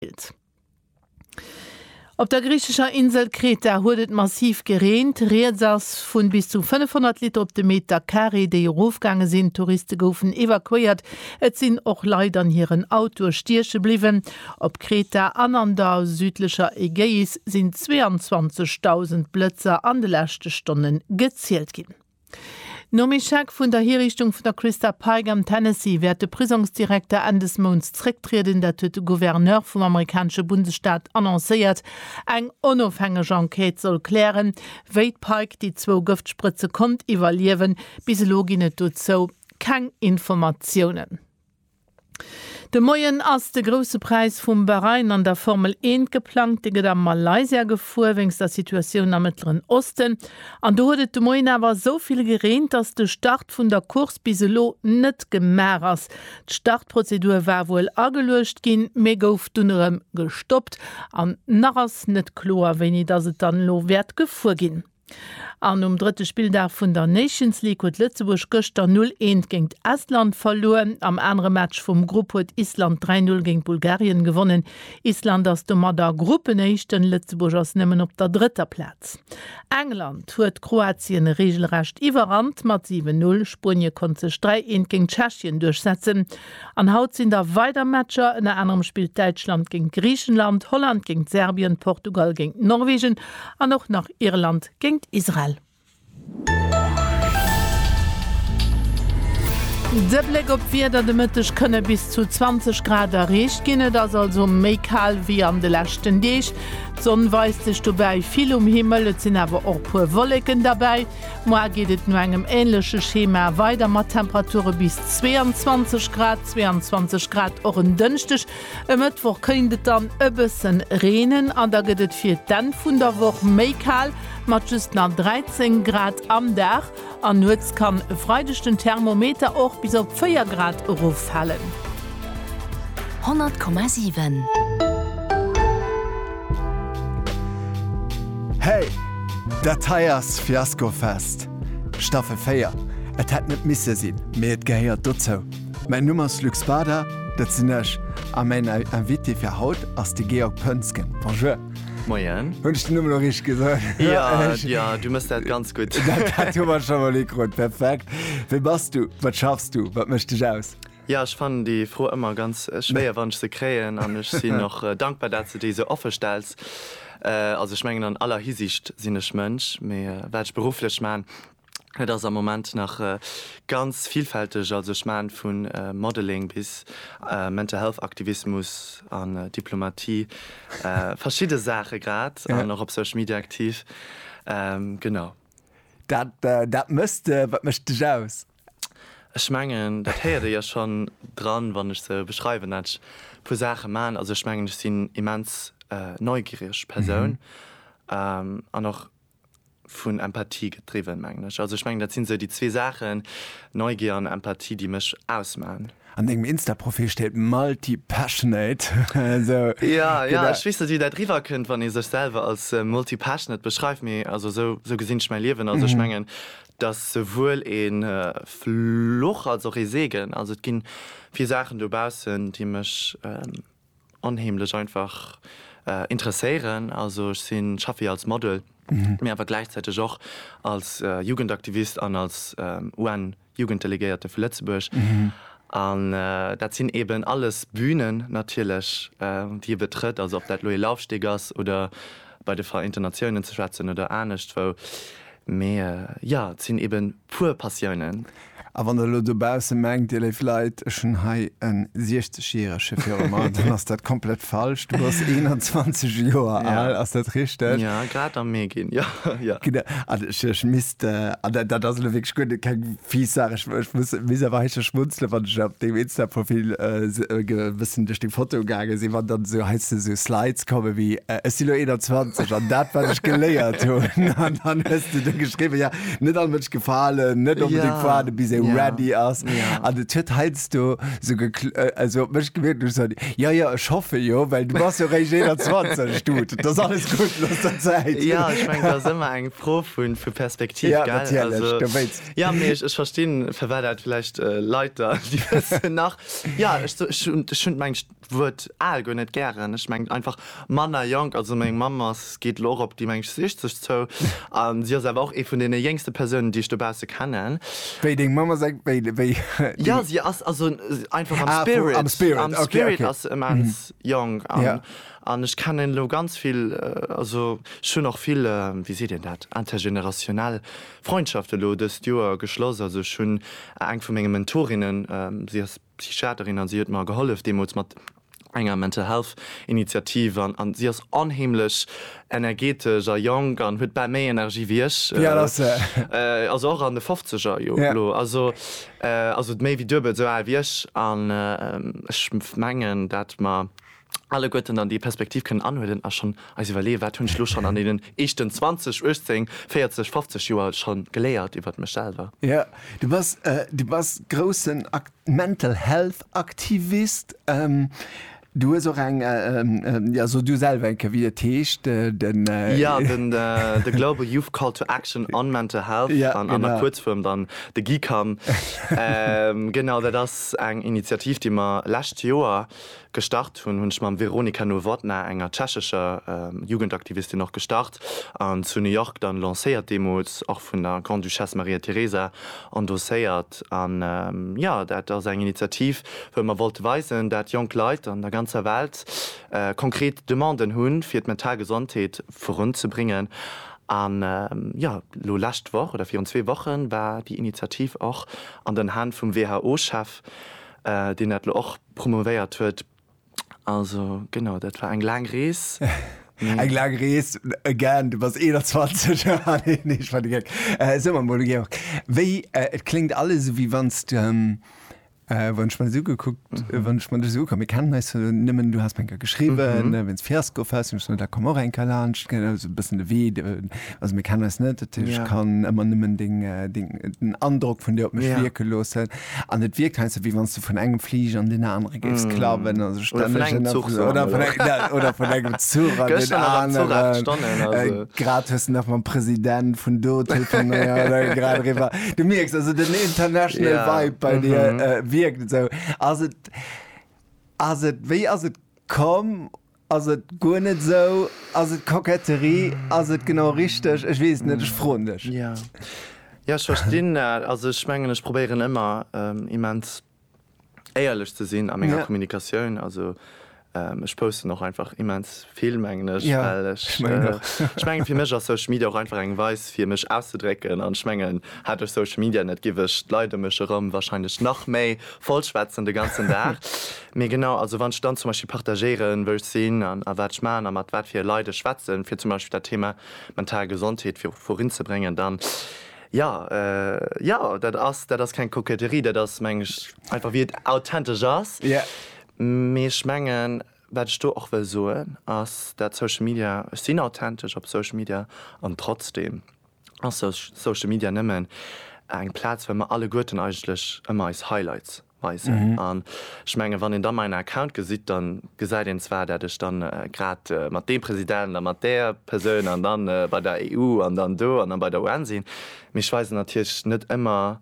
gedeelt. Op der griichescher Insel Kreta huet et massiv gereent. Rieds ass vun bis zu 500 Liter op de Meter Carré, déi erofgaange sinn. Touriste goufen evakuéiert, et sinn och Leit an hiren Autoe stieche bliwwen. Op Kreta an an der südlecher Ägäis sinn 22.000 Blëtzer an de leschte Stonne gezielt ginn. Nom Echec vun der Hiriichtung vun der Christa Pike am Tennessee wäert de Prisongsdirekter Enn des Mounts zrécktrieden, dat huet de Gouverneur vum amerikanesche Bundesstaat annoncéiert. Eng onofhängeg Enquête soll klären, wéi d'Pike déi zwou Gëftsprëtze konnt iwwerliewen. Bis elo ginn et dozou keng Informatiounen. De Moien ass de Grousse Präis vum Bahrain an der Formel Eent geplangt. Dee gëtt a Malaysia gefuer, wéinst der Situatioun am Mëttleren Osten. An do huet et de Moien awer esou vill gereent, datt de Start vun der Course bis elo net gemaach ass. D'Startprozedur war wuel ageluecht ginn, mee gouf dunn erëm gestoppt. An nach ass net kloer, wéini datt et dann elo wäert gefuer ginn. An um drëtte Spilldag vun der Nations League huet Lëtzebuerg gëschter 0, 1 géint Estland verluer. Am anere Match vum Grupp huet Island 3, 0 géint Bulgarien gewonnen. Island ass domadder Gruppenéischten, Lëtzebuerg ass nëmmen op der drëtter Plaz. England huet Kroatien reegelrecht iwwerrannt mat 7, 0. Spuenie konnt sech 3, 1 géint Tschechien duerchsetzen. An haut sinn da weider Matcher, ënner anerem spillt Däitschland géint Griichenland, Holland géint Serbien, Portugal géint Norwegen an och nach Irland géint Israel. De Bléck op d'Wieder, de Mëtteg kënne bis zu 20 Grad erreecht ginn, et ass also méi kal wéi an de leschten Deeg. D'Sonn weist sech dobäi vill um Himmel, et sinn awer och e puer Wolleken derbäi. Moar geet et no engem änleche Schema weider mat Temperature bis 22 Grad, 22 Grad och en Dënschdeg. E Mëttwoch kéint et dann e bësse reenen an da gëtt et fir d'Enn vun der Woch méi kal mat just nach 13 Grad am Dag. An nuets kann e Freideg den Thermometer och bis op 4 Grad eroffalen. 100,7. Hey! Dat hei ass Fiasco Fest, Staffel 4. Et hätt net misse sinn, mee et gehéiert dozou. Mäin Numm ass Luc Spada, dat sinn ech, a mäin Invité fir haut ass de Georg Pönsgen. Bonjour! Moien! Hunn ech den Numm elo richteg gesot? Jo, jo, du mëss dat ganz gutt. Dat hu mer scho mol ikrut. Perfekt. Wie bass du? Wat schaffs du? Wat mécht dech aus? Jo, ech fannen déi Fro ëmmer ganz schwéier, wann ech se kréien, an ech sinn och dankbar, dat s de déi esou offe stells. Also ech mengen an aller Hisiicht sinn ech Mënsch, mee wat ech berufflech maan, dat ass am Moment nach ganz villfälteg. Also ech maan vu Modeling bis Mental Health Aktivismus an Diplomatie, verschidde Saache grad, an och op Social Media aktiv, genau. Dat dat mësst, wat mécht dech aus? Ech mengen dat héiert ee jo schonn dran wann ech se beschreiwen dat ech e puer Saache man. Also ech mengen ech sinn immens neugiereg Persoun an och vun Empathie gedriwwen mengen ech. Also ech mengen dat sinn sou déi zwee Saachen, Neugier an Empathie, déi mech ausman. An dengem Insta Profil steet multi passionate. Jo jo ech weess net wéi dat riwwer kënnt wann ee sech selwer als multi passionate beschreift mee also sou gesinn ech mäi Liewen. Also ech mengen. D'ass souwuel ee Fluch als och ee Segen. Also et gi vill Saachen dobaussen, déi mech onheemlech einfach interesséieren. Also ech sinn, ech schaffe jo als Model, mee awer gläichzäiteg och als Jugendaktivist an als UN-Jugenddelegéierte vu Lëtzebuerg. An dat sinn eeben alles Bünen natierlech, déi e betrëtt. Also ob dat elo ee Laufsteg ass oder bei de Vereinten Natiounen ze schwätzen oder aneschtwou. Mee jo, et sinn ebe puer Passiounen. A wann der elo dobausse mengt, Dir léif Leit, ech hunn hei e 60 järege viru mer, dann ass dat komplett falsch. Du bass 21 Joer al, ass dat richteg? Jo, grad am Mee ginn, jo. Genau, an ech misst, an dat ass elo wierklech guer keng Fies Saach, ech ech muss muss awer hei scho schmunzelen, wann ech op dengem Insta-Profil äh, ge bëssen duerch deng Fotoe gaange sinn, wann dann esou heiansdo esou Slides kommen wéi äh, ech sinn elo 21 an dat wat ech geléiert hunn an dann hues du do geschriwwen, ja, net all Mënsch gefalen, net onbedéngt Ja, fuarden, bis ee ja, ready ass ja. an et huet heiansdo esou gekl äh, also op mech gewierkt, ech sot, ja, ja, ech hoffe jo, well du bass jo réischt 21, Dude, et ass alles gutt, looss der Zäit. Ja, ech mengen, dat ass ëmmer eng Fro vun vu Perspektiv, gell? Ja, natierlech, du wéilts. Also, ja, mee ech, ech verstinn, firwat dat vläicht Leit da, déi wëssen nach, ja, ech, ech hunn, ech hunn mengt d'Wuert al guer net gären. Ech mengt einfach manner jonk. Also meng Mamm ass, geet elo och op déi, mengt ech, 60 zou a si ass awer och ee vun deene jéngste Persounen, déi ech dobausse kennen. Wéi, deng Mamm ass eng, wéi, wéi, déng. Ja, si ass, also einfach am Spirit. Ah, am Spirit, okay, okay. Am Spirit ass se immens jonk an. Ja. An ech kennen elo ganz vill, also ech hunn och vill, wéi seet een dat, intergénérationnel Freundschaften elo dëst Joer geschloss. Also ech hunn eng vu menge Mentorinnen, si ass Psychiaterin an si huet mer gehollef deemools mat enger Mental Health Initiativ an an si ass onheemlech energetesch a jonk an huet bal méi Energie wéi ech. Wéi al ass se? Also och an de Fofzeger jo elo. Also also méi wéi duebel esou al wéi ech. An ech mengen, dat mer alleguerten dann déi Perspektiv kënnen anhuelen a schonn eis iwwerleeë, Wat hunn ech elo schonn an deenen éischten 20, 18, 40, 50 Joer scho geléiert iwwert mech selwer? Jo, du bass, du bass groussen Mental Health Aktivist. Du hues och eng, jo, so du selwer eng Kéier, wéi et heescht, den. Jo, den The Global Youth Call to Action on Mental Health, an der Kuerzfuerm dann de GYCAM. Genau, dat ass eng Initiativ, déi mer lescht Joer Gestart hunn, hunn ech mam Veronika Nowotná, enger tschechescher Jugendaktivistin, och gestart an zu New York dann lancéiert, deemools och vun der Grande-Duchesse Maria Teresa endosséiert. An jo, dat ass eng Initiativ, wou mer wollte weisen, dat jonk Leit an der ganzer Welt konkret Demanden hunn, fir d'mental Gesondheet virun ze bréngen. An jo, elo lescht Woch oder virun zwee Wochen war déi Initiativ och an den Hänn vum WHO-Chef, deen dat elo och Promovéiert huet. Also genau, dat war eng laang Rees, mee. Eng laang Rees, again, du bass 21. Haha, nee, nee, ech war de Geck. So, mam Ole Georg, wéi, et kléngt alles esou, wéi wann s de, wann ech mer dës ugekuckt, wann ech mer dës ugekuckt, mir kennen eis jo nëmmen, du has mer eng Kéier geschriwwen, wéi s de Fiasko fest, hunn ech gesot, da komm och eng Kéier laanscht, genau, esou e bëssen de Wee, also mir kennen eis net, dat heescht, ech kann ëmmer nëmmen deng, deng, den Androck vun dir op mech wierke loossen. An et wierkt heiansdo, wéi wann s de vun engem Fliger an deen anere géifs klappen. Mm. Also oder vun engem Zuch sou oder vun engem, ja, oder vun engem Zuch an den aneren. Grad hues de nach mam President vun do telefonéiert a grad eriwwer. Du mierks also den international Vibe bei dir wierkt esou. Ass et, ass et, wéi ass et komm? Ass et guer net esou? Ass et Koketterie? Ass et genau richteg? Ech weess et net, ech froen dech. Jo, jo, ech verstinn dat. Also ech mengen, ech probéieren ëmmer immens éierlech ze sinn a menger Kommunikatioun. Also ech posten och einfach immens vill, mengen ech, well ech, ech mengen, fir mech ass Social Media och einfach eng Weis fir mech auszedrécken. An ech mengen, hätt ech Social Media net, géif ech d'Leit ëm mech erëm warscheinlech nach méi vollschwätzen de ganzen Dag. Mee genau, also wann ech dann zum Beispill partagéieren, wou ech sinn a wat ech maachen a mat wat fir Leit ech schwätzen, fir zum Beispill dat Thema mental Gesondheet vir vorin ze bréngen, dann, jo, jo, dat ass, dat ass keng Koketterie, dat ass, mengen ech, einfach wéi et authentesch ass. Mee ech mengen, wat ech do och wëll soen, ass, dat Social Media, ech sinn authentesch op Social Media an trotzdeem ass Social Media nëmmen eng Plaz, well mer alleguerten eigentlech ëmmer eis Highlights weisen an ech mengen wann een da meinen Account gesitt da gesäit een zwar dat ech dann grad mat deem President a mat där Persoun an dann bei der EU an dann do an dann bei der UN sinn, mee ech weisen natierlech net ëmmer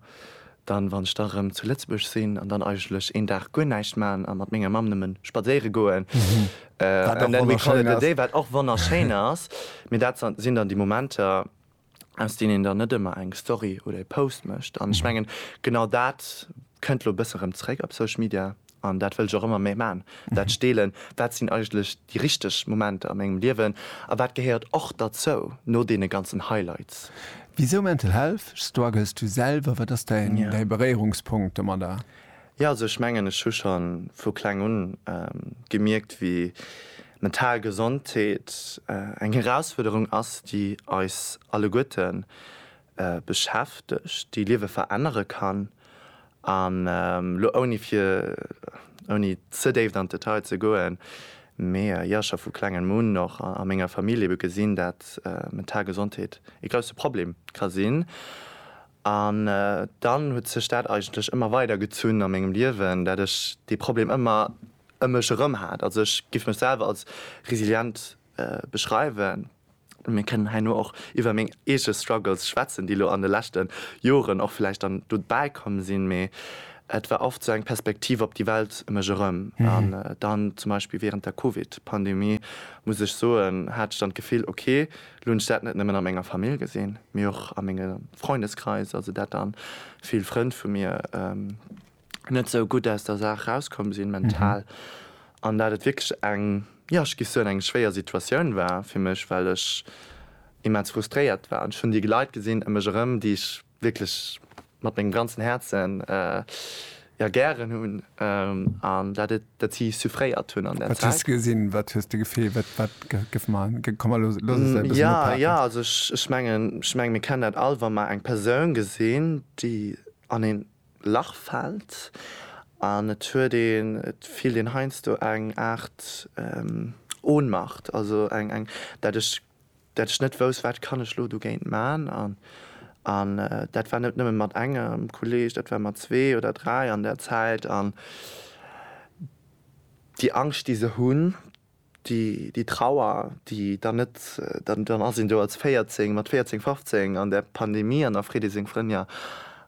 dann wann ech da erëm zu Lëtzebuerg sinn an dann eigentlech een Dag guer näischt maachen a mat menger Mamm nëmmen spadséiere goen and then we call it a day, wat och wonnerschéin ass, mee dat sinn dann déi Momenter. aus deen een dann net ëmmer eng Story oder e Post mécht. An ech mengen, genau dat kënnt elo e bësse rëm zeréck op Social Media. An dat wëll ech och ëmmer méi maachen, dat steelen, wat sinn eigentlech déi richteg Momenter a mengem Liewen a wat gehéiert och derzou no deene ganzen Highlights. Wisou Mental Health? Struggles du selwer? Wat ass däi Beréierungspunkt domadder? Jo, also ech mengen, ech hu scho vu kleng un gemierkt, wéi mental Gesondheet eng Erausfuerderung ass, déi eis alleguerte beschäftegt, déi Liewe verännere kann. An elo ouni fir, ouni ze déift an d'Detail ze goen, mee jo, scho vu klengem un, och a menger Famill, ebe gesinn, dat mental Gesondheet ee grousse Problem ka sinn. An dann huet sech dat eigentlech ëmmer weider gezunn a mengem Liewen, dat ech dee Problem ëmmer ëm mech erëm hat. Also ech géif mech selwer als resilient beschreiwen. Mir kënnen herno och iwwer meng eege Struggles schwätzen, déi elo an de leschte Joren och vläicht dann dobäi komm sinn, mee et war oft sou eng Perspektiv op déi Welt ëm mech erëm. An dann zum Beispill wärend der Covid-Pandemie, muss ech soen, hat ech dann d'Gefill, ok, Lo hunn ech dat net nëmmen a menger Famill gesinn, mee och a menge Freundeskreis, also dat dann vill Frënn vu mir net sou gutt aus der Saach rauskomm sinn, mental, an dat et wierklech eng, jo, ech géif soen, eng schwéier Situatioun war fir mech, well ech immens frustréiert war. An ech hunn déi Leit gesinn ëm mech erëm, déi ech wierklech mat mengem ganzen Häerzen jo gären hunn an dat et dat si suffréiert hunn an där Zäit. Wat hues de gesinn? Wat hues de gefeelt? Wat wat gouf mar komm elo looss eis dat e bëssen ophaken. Jo jo also ech ech mengen ech mengen mir kennen dat all wa mer eng Persoun gesinn déi an een Lach fält an et huet een et fillt een heiansdo eng Aart Ohnmacht also eng eng dat ech dat ech net wouss wat kann ech lo dogéint man an an dat war net nëmmen mat engem Kolleg, dat war mat zwee oder dräi an der Zäit an déi Angscht déi se hunn, déi déi Trauer déi dann net dann dann ass een do als 14 mat 14, 15 an der Pandemie an der Freddy seng Frënn, jo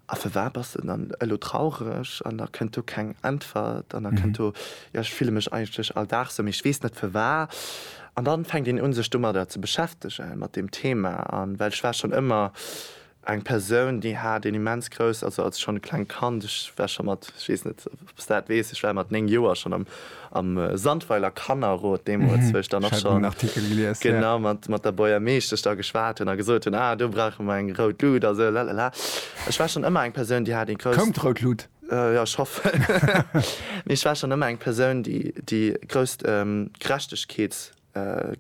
A firwat bass de dann elo traureg? An da kënnt do keng Äntwert. An da kënnt do, Jo, ech fille mech eigentlech all Dag esou, mee ech weess net firwat. An dann fänkt een un, sech domadder ze beschäftegen, mat deem Thema. An well ech war schonn ëmmer eng Persoun, déi hat een immens grouss, also als schonn e klengt Kand, ech war scho mat, ech weess net, Ob s dat weess, ech war mat 9 Joer schonn am am Sandweiler Kannerrot deemools, wou ech dann och schonn, genau, mat mat der Bourgermeeschtesch da geschwat hunn a gesot hunn, ah do brauche mer eng rout Lut a sou lalala. Ech war schonn ëmmer eng Persoun, déi hat ee grousst. Koum d'rout Lut? Jo, ech hoffen. Mee ech war schonn ëmmer eng Persoun, déi déi grousst Gerechtegkeets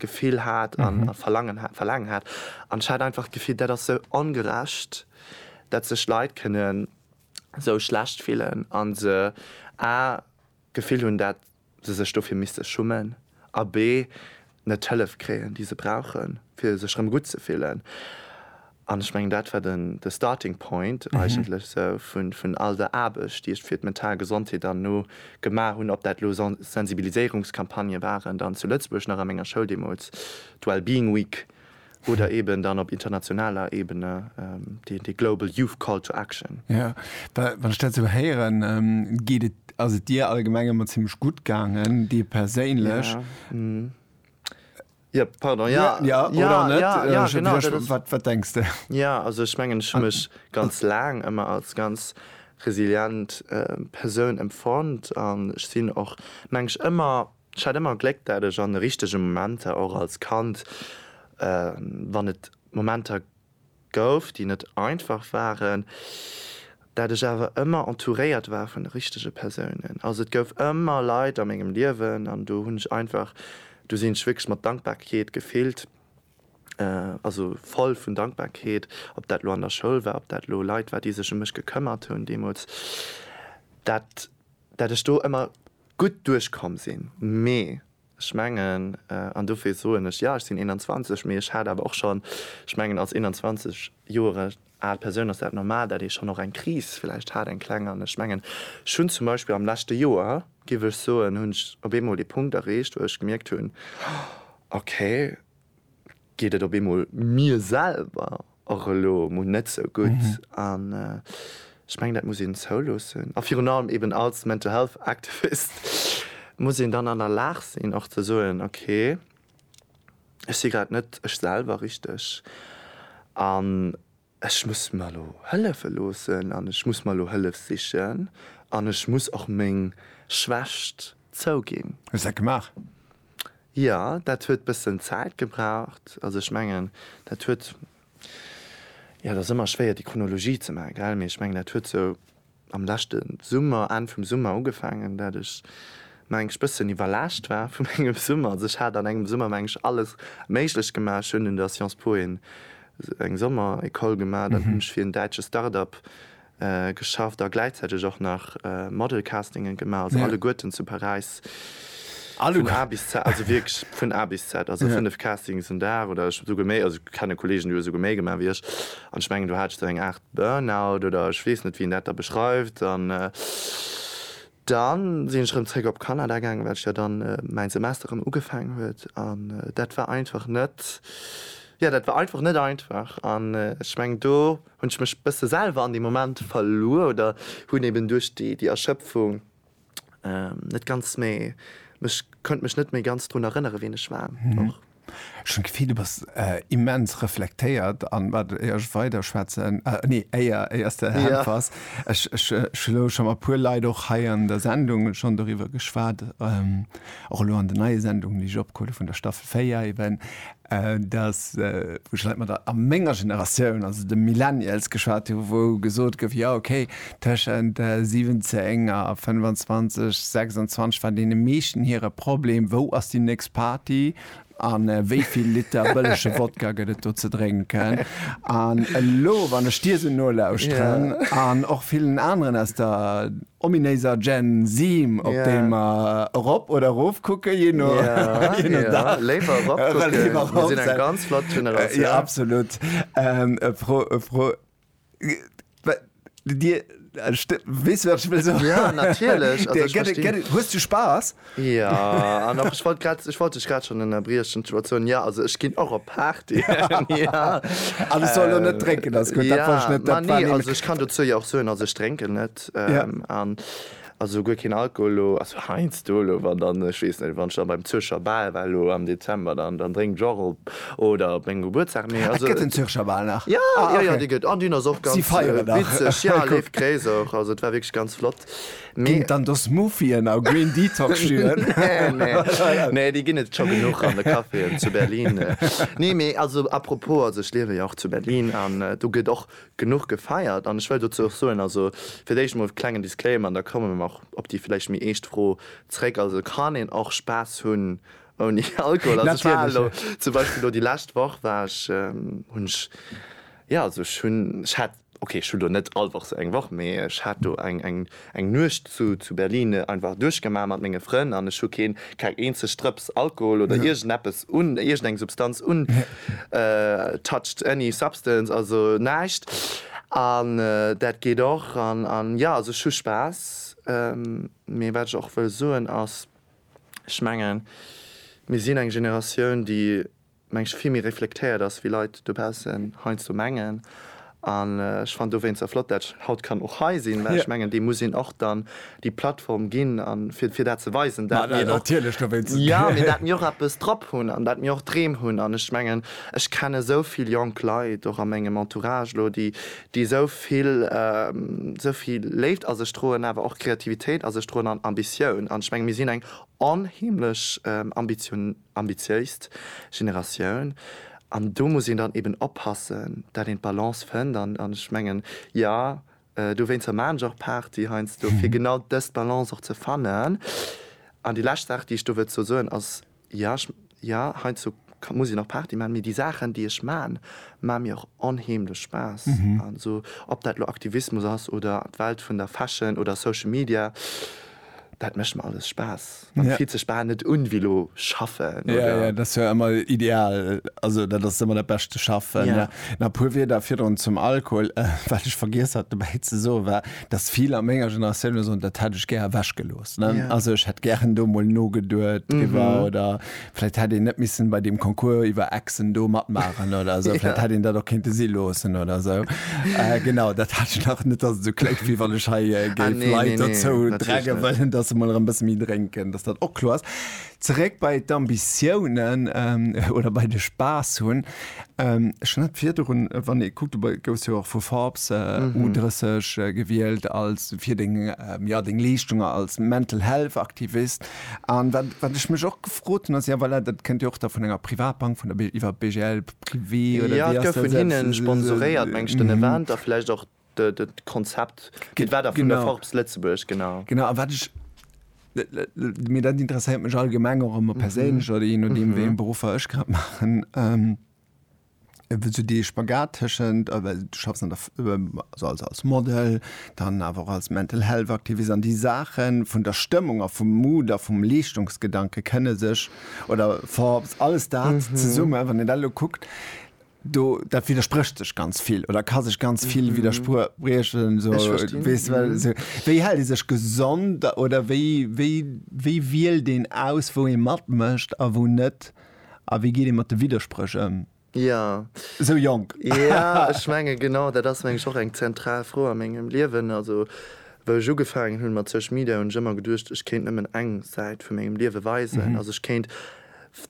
Gefill hat a Verlangen hat, Verlaangen hat. An ech hat einfach d'Gefill, dat ass sou ongerecht, dat sech Leit kënnen. sou schlecht fillen a se a d'Gefill hunn, dat se sech dofir misste schummen a b net d'Hëllef kréien, déi se brauche fir sech rëm gutt ze fillen. An ech mengen, dat war den de Starting Point eigentlech sou vun all der Aarbecht, déi ech fir d'mental Gesondheet dann elo gemaach hunn, ob dat elo Sensibiliséierungscampagnë waren dann zu Lëtzebuerg nach a menger Schoul deemools, d'Wellbeing Week Oder eben dann op internationaler Ebene déi Global Youth Call to Action. Jo, wann ech dat esou héieren, geet et, ass et dir allgemeng ëmmer zimmlech gutt gaangen, dir perséinlech. Jo, pardon, jo. Jo, oder och net. Jo, genau. Wat denks de? Jo, also ech mengen, ech hu mech ganz laang ëmmer als ganz resilient Persoun empfonnt an ech sinn och, mengen ech, ëmmer Ech hat ëmmer Gléck dat ech an de richtege Momenter, och als Kand, wann et Momenter gouf déi net einfach waren, dat ech awer ëmmer entouréiert war vun de richtege Persounen. Also et gouf ëmmer Leit a mengem Liewen an do hunn ech einfach, do sinn ech wierklech mat Dankbarkeet gefillt, also voll vun Dankbarkeet, ob dat elo an der Schoul war, ob dat elo Leit war déi sech ëm mech gekëmmert hunn deemools, dat dat ech do ëmmer gutt duerchkomm sinn. Mee ech mengen, an dofir soen ech, jo ech sinn 21, mee ech hat awer och schonn, ech mengen als 21 Joer al Persoun ass dat normal, dat ee schonn och eng Kris vläicht hat, eng kleng. An ech mengen, ech hunn zum Beispill am leschte Joer, géif ech soen, hunn ech op eemol dee Punkt erreecht, wou ech gemierkt hunn, okay, geet et op eemol mir selwer och elo emol net sou gutt. An ech mengen, dat muss een zouloossen. A virun allem eben als Mental Health Activist muss een dann an der Lag sinn och ze soen, okay, ech si grad net ech selwer richteg. An Ech muss mer elo hëllefe loossen an ech muss mer elo Hëllef sichen an ech muss och meng Schwächt zouginn. Hues dat gemaach? Jo, dat huet bëssen Zäit gebraucht. Also ech mengen, dat huet, jo, et ass ëmmer schwéier déi Chronologie ze maachen, gell, mee ech mengen, dat huet sou am leschte Summer, Enn vum Summer ugefaangen, dat ech mengs bëssen iwwerlaascht war vu mengem Summer. Also ech hat an engem Summer mengs alles méiglech gemaach. Ech hunn un der Sciences Po een eng Sommer-Ecole gemaach, dann hunn ech fir en däitsche Start-Up geschafft a gläichzäiteg och nach Model-Castingen gemaach, also alleguerten zu Paräis vun A bis Z, also wierklech vun A bis Z, also 5 Castings en Dag oder esouguer méi, also ech kenne Kollegen déi hu esouguer méi gemaach wéi ech an ech mengen do hat ech dann eng 8, Burnout oder ech weess net wéi een dat da beschreift. An da sinn ech rëm zréck op Kanada gaangen, well ech jo dann mäin Semester rëm ugefaangen huet. An dat war einfach net, jo dat war einfach net einfach. An ech mengen do hunn ech mech bësse selwer an deem Moment verluer oder hunn eben duerch déi Erschëpfung, Net ganz méi. Ech kënnt mech net méi ganz drun erënneren, ween ech war. Och. Ech hunn d'Gefill, du bass immens reflektéiert. An wat, éier ech weiderschwätzen, nee, éier, éier s de äntwers, ech, ech hu elo scho mat e puer Leit och hei an der Sendung schonn doriwwer geschwat, och elo an den neie Sendungen, déi ech opgeholl hu vun der Staffel 4 eben, dass, wou ech leit mat der a menger Generatioun, also de Millennials, geschwat hu wou gesot gouf, jo okay, tëschent 17 a 25, 26 war deene meeschten hire Problem, wou ass déi nächst Party a wéi vill Liter bëllege Wodka gëtt et do ze drénken. An elo, wann ech dir esou nolauschteren an och villen aneren aus der, Ominéiser Gen Seem op déi mer erop oder erof kucken, jee no Dag. Léiwer erop kucken, mir sinn eng ganz flott Generatioun. Jo, absolut. E Fro, e Fro, Dir, weess du wat ech wëll soen? Jo, natierlech. Hues du Spaass? Ja, an och ech wollt grad, ech wollt dech grad schonn ënnerbriechen, d'Situatioun, ja, also ech ginn och op Partyen, ja. An ech soll elo net drénken, ass gutt, dat wollt ech net, dat war nämlech. Ma nee, also ech kann dozou jo och soen, also ech drénken net, an also guer keen Alkohol elo, also heiansdo elo, wann dann, ech weess net, wann ech dann beim Zürcher Bal war elo am Dezember, dann drénken ech och op, oder op mengem Gebuertsdag, mee also. Et gëtt den Zürcher Bal nach? Ja, ja, ja, dee gëtt, an deen ass och ganz witzeg, ja, leeft gréisser, also et war wierklech ganz flott. Ginn et dann do Smoothien a Green Detox Juen? Nee, déi ginn et scho genuch an de Caféen zu Berlin. Nee, mee also à propos, also ech liewen jo och zu Berlin an do gëtt och genuch gefeiert an ech wëll dozou och soen, also fir d'éischt emol klengen Disclaimer an da komme mer och op déi vläicht méi eescht Fro zréck, also kann een och Spaass hunn ouni Alkohol? Also ech war elo zum Beispill elo déi lescht Woch war ech, hunn ech, jo also ech hunn, ech hat, Ok, ech hu do net all Woch sou eng Woch, mee ech hat do eng Nuecht zu Berlin einfach duerchgemaach mat menge Frënn an ech hu keen keng eenzeg Drëps Alkohol oder iergend eppes un iergend eng Substanz un touched any substance, also näischt an dat geet och an jo, also ech hu Spaass. Mee wat ech och wëll soen ass, ech mengen mir sinn eng Generatioun déi, mengen ech, vill méi reflektéiert ass, wéi Leit dobaussen heiansdo mengen. An ech fannen dowéinster flott, dat ech haut kann och hei sinn, well ech mengen, deem muss een och dann déi Plattform ginn, fir dat ze weisen, dat mir och, jo, mee dat mir och eppes drop hunn an dat mir och Dreem hunn. An ech mengen, ech kennen esou vill jonk Leit, och a mengem Entourage elo, déi esou vill, esou vill Léift a sech droen, awer och Kreativitéit a sech droen an Ambitioun. An ech mengen, mir sinn eng onheemlech ambitioniert. ambitiéist Generatioun an do muss een dann eben oppassen, dat een d'Balance fënnt an ech mengen, jo, dowéinst hu mer nämlech och Party heiansdo, fir genau dës Balance och ze fannen. An déi lescht Saach, déi ech do wëllt dozou soen, ass, jo, jo, heiansdo muss een och Party maachen, mee déi Saachen, déi ech maachen, maache mir och onheemlech Spaass. Also ob dat elo Aktivismus ass oder d'Welt vun der Fashion oder Social Media, Dat mécht mer alles Spaass. Et fillt sech bal net un wéi elo schaffen, oder? Jo, jo, dat ass jo ëmmer ideal. Also dat ass ëmmer dat Bescht, ze schaffen. Nach e puer Wierder virdrun zum Alkohol. Wat ech vergiess hat dobäi ze soen, war, datt vill a menger Generatioun elo soen, dat hätt ech gär ewechgelooss. Also ech hätt gären do emol nogeduet driwwer oder Vläit hätt een net missen bei deem Concours iwwer Exen do matmaachen oder esou. Vläit hätt een dat och kéinte si loossen oder esou. Genau, dat hat ech nach net, dass et esou kléngt, wéi wann ech hei géif Leit dozou drängen wëllen, dass se mol erëm e bësse méi drénken, dass dat och kloer ass. Zeréck bei d'Ambitiounen oder bei de Spaass hunn. Ech hunn hatt virdrun, wann ee kuckt, du gouss jo och vu Forbes, U 30, gewielt als fir deng, jo, deng Leeschtunge als Mental Health Aktivist. An wat, wat ech mech och gefrot hunn, ass, jo voilà, dat kënnt jo och da vun enger Privatbank, vun der BG, iwwer BGL privé oder wéi ass dat? Jo, et gouf vun hinne sponsoréiert, mengen ech, den Event a vläicht och d'Konzept, mee et war da vun der Forbes Lëtzebuerg, genau. Genau, a wat ech, mee dat interesséiert mech allgemeng och ëmmer perséinlech oder jee nodeem, wéi eng Beruffer ech grad maachen. sou dee Spagat tëschent, du schaffs an der, also als, als Model, dann awer och als Mental Health Aktivist an déi Saache vun der Stëmmung a vum Mood a vum Leeschtungsgedanke kënne sech oder ver, alles dat zesumme, wann een dat elo kuckt, do, dat widdersprécht sech ganz vill oder ka sech ganz vill widderspriechen esou, weess de, well esou, wéi hält ee sech gesond oder wéi, wéi, wéi wielt een aus, wou ee matmécht a wou net? A wéi geet ee mat de Widderspréch ëm? Jo. Esou jonk. Jo, ech menge genau dat ass meng ech och eng zentral Fro a mengem Liewen. Also wou ech ugefaangen hunn mat Social Media hunn ech ëmmer geduecht, ech kéint nëmmen eng Säit vu mengem Liewe weisen. Also ech kéint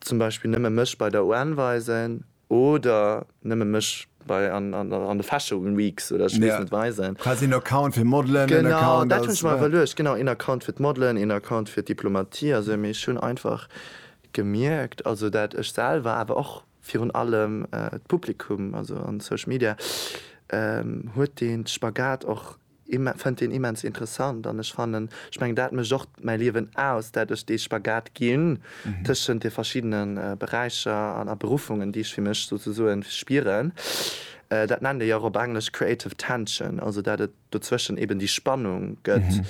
zum Beispill nëmme mech bei der UN weisen oder nëmme mech bei an de Fashion Weeks oder ech weess net weisen. Quasi en Account fir Modelen, en Account als. Genau, dat hunn ech mer iwwerluecht. Genau, een Account fir d'Modelen, een Account fir d'Diplomatie. Also mee ech hunn einfach Gemierkt, also dat ech selwer, awer och virun allem d'Publikum, also an Social Media huet deen Spagat och, fënnt deen immens interessant. An ech fannen, ech mengen dat mécht och mäi Liewen aus, dat ech dee Spagat ginn tëschent de verschiddene Beräicher a Beruffungen, déi ech fir mech souzesoen spieren. Dat nennt ee jo och op Englesch creative tension, also dat et dozwëschen eben déi Spannung gëtt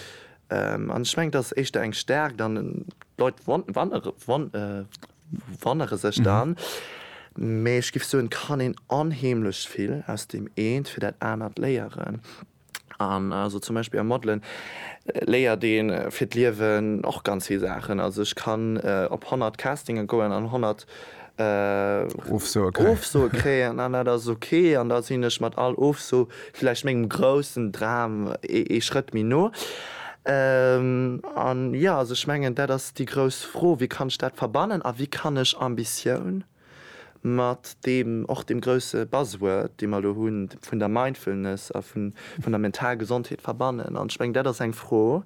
an ech mengen dat ass éischter eng Stärkt an d'Leit wonnere sech dann, mee ech géif soen et kann een onheemlech vill aus deem eent fir dat anert léieren an also zum Beispill am Modelen léiert ee fir d'Liewen och ganz vill Saachen. Also ech kann op 100 Castinge goen an 100 Ofsoe kréien. Ofsoe kréien an dat ass ok an da sinn ech mat all Ofso vläicht mengem groussen Dram ee Schrëtt méi no. An jo, also ech mengen dat ass déi grouss Fro, wéi kann ech dat verbannen a wéi kann ech Ambitioun mat deem och deem grousse Buzzword, dee mer elo hunn, vun der Mindfulness a vun der mental Gesondheet verbannen. An ech mengen dat ass eng Fro,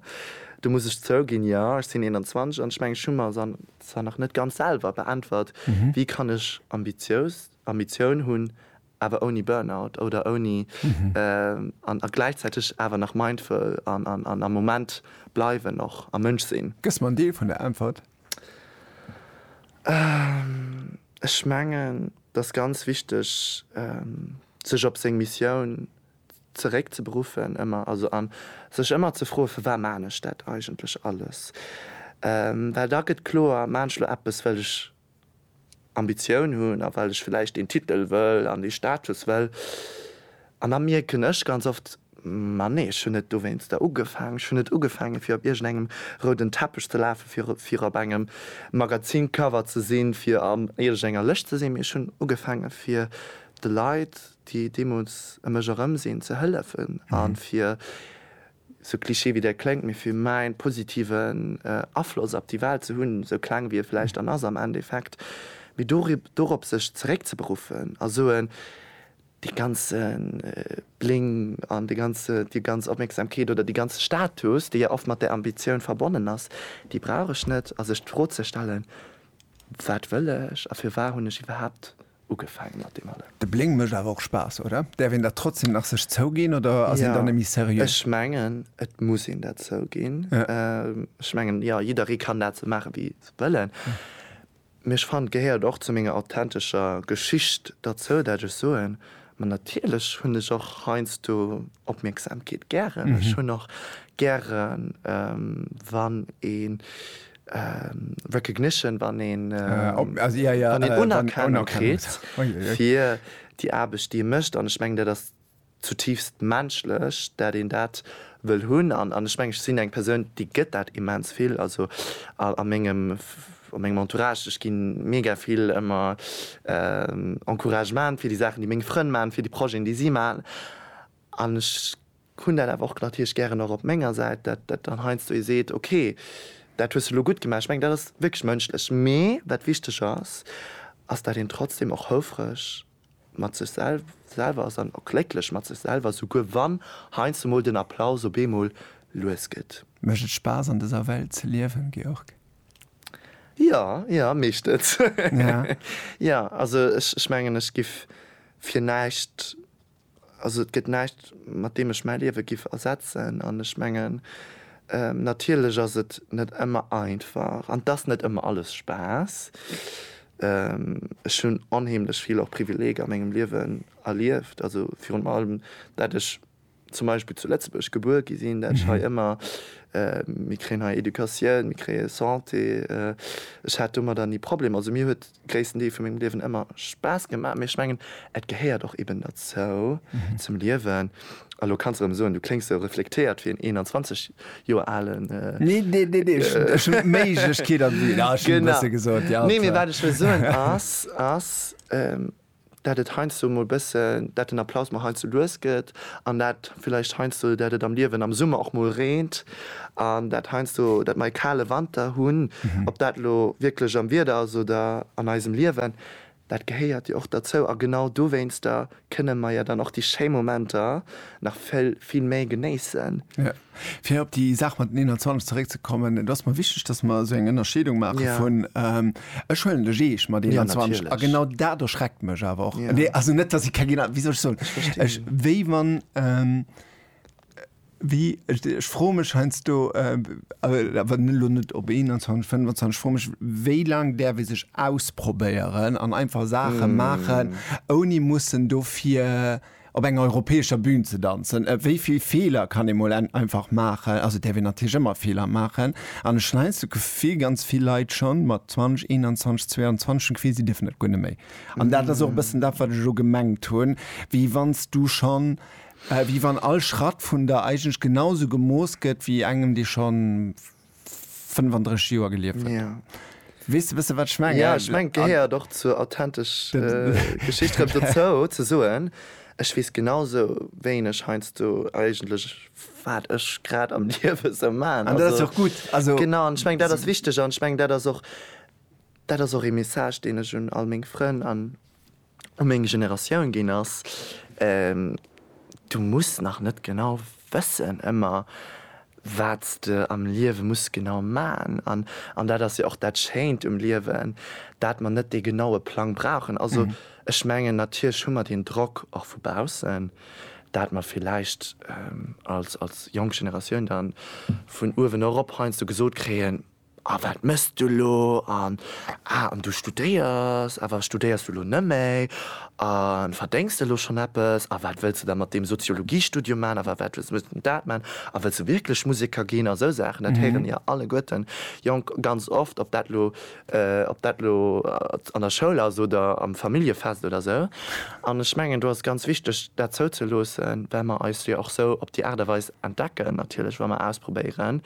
do muss ech zouginn, jo, ech sinn 21 an ech mengen ech hu mer se an Zwar nach net ganz selwer beäntwert, wéi kann ech ambitiös, Ambitioun hunn, awer ouni Burnout oder ouni, an a gläichzäiteg awer nach mindful an an am Moment bleiwen och a Mënsch sinn? Gëss mer en Deel vun der Äntwert? Ech mengen, et ass ganz wichteg, sech op seng Missioun zeréck ze beruffen ëmmer, also an sech ëmmer ze froe firwat maachen ech dat eigentlech alles, well da gëtt kloer, maachen ech elo eppes well ech Ambitioun hunn a well ech vläicht deen Titel wëll an dee Status wëll an da mierken ech ganz oft, ma nee, ech hunn net dowéinster ugefaangen, ech hunn net ugefaange fir op iergendengem rouden Teppech ze lafe fir op engem Magazincover ze sinn, fir an iergendenger Lëscht ze sinn, mee ech hunn ugefaange fir de Leit, déi deemools e mech erëm sinn ze hëllefen a fir, sou cliché wéi dat kléngt, mee fir mäin positiven Afloss op déi Welt ze hunn, sou kleng wéi e vläicht dann ass am Endeffekt, mee dorop sech zeréckzeberuffen a soen, dee ganze Bling an déi ganz Opmierksamkeet oder dee ganze Status, dee jo oft mat där Ambitioun verbonnen ass, déi brauch ech net a sech d'Fro ze stellen, wat wëll ech a firwat hunn ech iwwerhaapt ugefaangen mat deem allem. De Bléng mécht awer och Spaass, oder? Däerf een dat trotzdem nach sech zouginn oder ass een dann méi seriö? Ech mengen, et muss een dat zouginn. Ech mengen, jo, jidderee kann dat sou maachen, wéi se wëllen. Mee ech fannen, et gehéiert och zu menger authentescher Geschicht derzou, dat ech soen, ma natierlech hunn ech och heiansdo Opmierksamkeet gären. Ech hunn och gären, wann ee Recognition, wann een Unerkennung kritt fir déi Aarbecht, déi ee mécht. An ech mengen, dat ass zutiifst menschlech, dat een dat wëll hunn. An ech mengen, ech sinn eng Persoun, déi gëtt dat immens vill. Also a mengem Entourage, ech gi mega vill ëmmer Encouragement fir déi Saachen, déi meng Frënn maachen, fir déi Projeten, déi si maachen. An ech Hunn dat awer och natierlech gären och op menger Säit, dat dat dann heiansdo ee seet, ok, dat hues de elo gutt gemaach. Ech mengen, dat ass wierklech mënschlech. Mee wat wichteg ass, ass, dat een trotzdem och houfreg mat sech selwer ass an och glécklech mat sech selwer, souguer wann heiansdo mol den Applaus op eemol lues gëtt. Mécht et Spaass an dëser Welt ze liewen, Georg? Jo, jo, mécht et. Jo, also ech mengen, ech giff fir näischt Also et gëtt näischt, mat deem ech mäi Liewe giff ersetzen. An ech mengen, natierlech ass et net ëmmer einfach an et ass net ëmmer alles Spaass. Ech hunn onheemlech vill och Privileeger a mengem Liewen erlieft, also virun allem, dat ech zum Beispill zu Lëtzebuerg gebuer gi sinn, dat ech hei ëmmer, mir kréien hei Educatioun, mir kréie Santé, ech hat domadder ni Problemer. Also mir huet gréissten Deel vu mengem Liewen ëmmer Spaass gemaach, mee ech mengen, et gehéiert och eben derzou, zum Liewen. A lo kanns de erëm soen, du kléngs esou reflektéiert wéi en 21 Joer alen. Nee, nee, nee, nee, ech hunn d'Méiglechkeet an. Genau. Nee, mee wat ech wëll soen ass, dat et heiansdo emol bëssen, dat den Applaus mol heiansdo lues gëtt an dat villäicht heiansdo, dat et am Liewen am Summer och mol reent an dat heiansdo, dat mer e kale Wanter hunn. Ob dat elo wierklech am Wieder ass oder an eisem Liewen, dat gehéiert jo och derzou a genau dowéinster kënne mer jo dann och déi schéi Momenter nach vill, vill méi genéissen. Fir op déi Saach mat den 21 zeréckzekommen, et ass mer wichteg, dass mer esou eng Ënnerscheedung maache vun, ech huelen de Jeesch mat 21 a genau dat erschreckt mech awer och, nee also net, dass ech keng, wéi soll ech soen, ech wéi wann, wéi, ech froe mech heiansdo, awer elo net op 21, 25, ech froe mech, wéi laang däerf ee sech ausprobéieren an einfach Saache maachen, ouni mussen dofir op enger europäescher Bühn ze danzen, wéi vill Feeler kann ee mol einfach maachen, also et däerf een natierlech ëmmer Feeler maachen, an ech hunn heinst d'Gefill, ganz vill Leit schonn mat 20, 21, 22 hunn d'Gefill, si dierfen dat guer net méi. An dat ass och e bëssen dat, wat ech elo gemengt hunn, wéi wann s du schonn, wéi wann all Schratt vun der eigentlech genausou gemooss gëtt wéi engem, dee schonn, 35 Joer gelieft huet. Ja. Wees de bësse wat ech mengen? Ja ech meng gehéiert och zur authentesch Geschicht rëm dozou ze soen, ech weess genau sou wéineg heiansdo eigentlech wat ech grad am Liewe sou man. An dat ass jo och gutt. Also. Genau, an ech meng dat ass wichteg an ech meng dat ass och dat ass och ee Message deen ech un all meng Frënn an. u meng Generatioun ginn ass, Du muss nach net genau wëssen ëmmer, wat s de am Liewe muss genau man. An dat ass jo och dat Schéint um Liewen, dat mer net dee genaue Plang brauchen. Also ech mengen, natierlech hu mer deen Drock och vu baussen, dat mer villäicht als jonk Generatioun da vun uewen erop heiansdo gesot kréien, A wat mëss du elo? An, Ah, an du studéiers? Awer studéiers du elo nëmméi? A verdéngs de elo schonn eppes? A wat wëlls de da mat deem Soziologiestudium man? Awer wat wëlls de dat man? A wëlls de wierklech Museker ginn? A sou Saachen, dat héiere mir jo alleguerten jonk ganz oft, ob dat elo, ob dat elo an der Schoul ass oder am Familljefest oder sou. An ech mengen, do ass et ganz wichteg, dat zouzeloossen, well mer eis jo och sou op déi Aart a Weis entdecken natierlech wa mer ausprobéieren,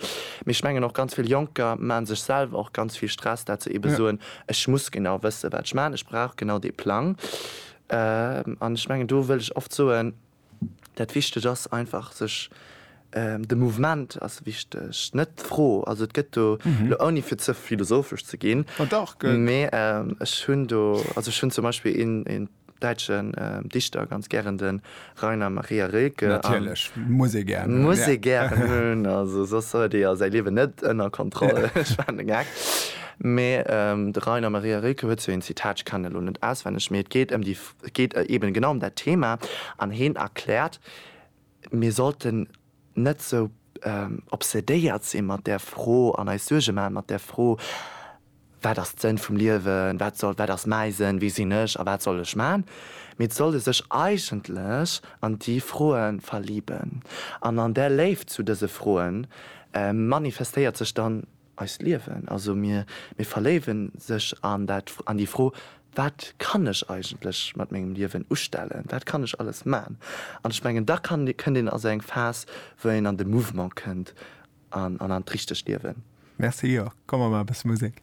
mee ech mengen och ganz vill Jonker maache sech selwer och ganz vill Stress dat se ebe soen, ech muss genau wësse wat ech maachen, ech brauch genau dee Plang an ech mengen do wëll ech oft soen, dat wichteg ass einfach sech, de Mouvement ass wichteg, net d'Fro, also et gëtt do elo ouni fir ze philosophesch ze ginn, mee ech hunn do, also ech hunn zum Beispill een däitschen Dichter ganz gären de Rainer Maria Rilke. Natierlech, muss ee gären hunn. Muss ee gären hunn, also soss huet ee jo säi Liewen net ënner Kontroll, ech maachen e Gag. Mee de Rainer Maria Rilke huet sou een Zitat, ech kennen elo net auswenneg, mee et geet ëm déi, et geet eben genau ëm dat Thema an heen erkläert, Mir sollten net sou obsedéiert si mat där Fro an eis Suerge maache mat där Fro, Wat ass d'Sënn vum Liewen? Wat soll, wat ass mäi Sënn? Wie sinn ech a wat soll ech maachen? Mee et solle sech eigentlech an déi Froe verliben. An an där Léift zu dëse Froe manifestéiert sech dann Eist Liewen, also mir, mir verléiwe sech an dat, an déi Fro, Wat kann ech eigentlech mat mengem Liewen ustellen? Wat kann ech alles man? An ech mengen, da kann, kënnt een a sou eng Phas, wou een an de Mouvement kënnt an, an an d'richtegt Liewen. Merci, jo, komm mer maache bësse Musek.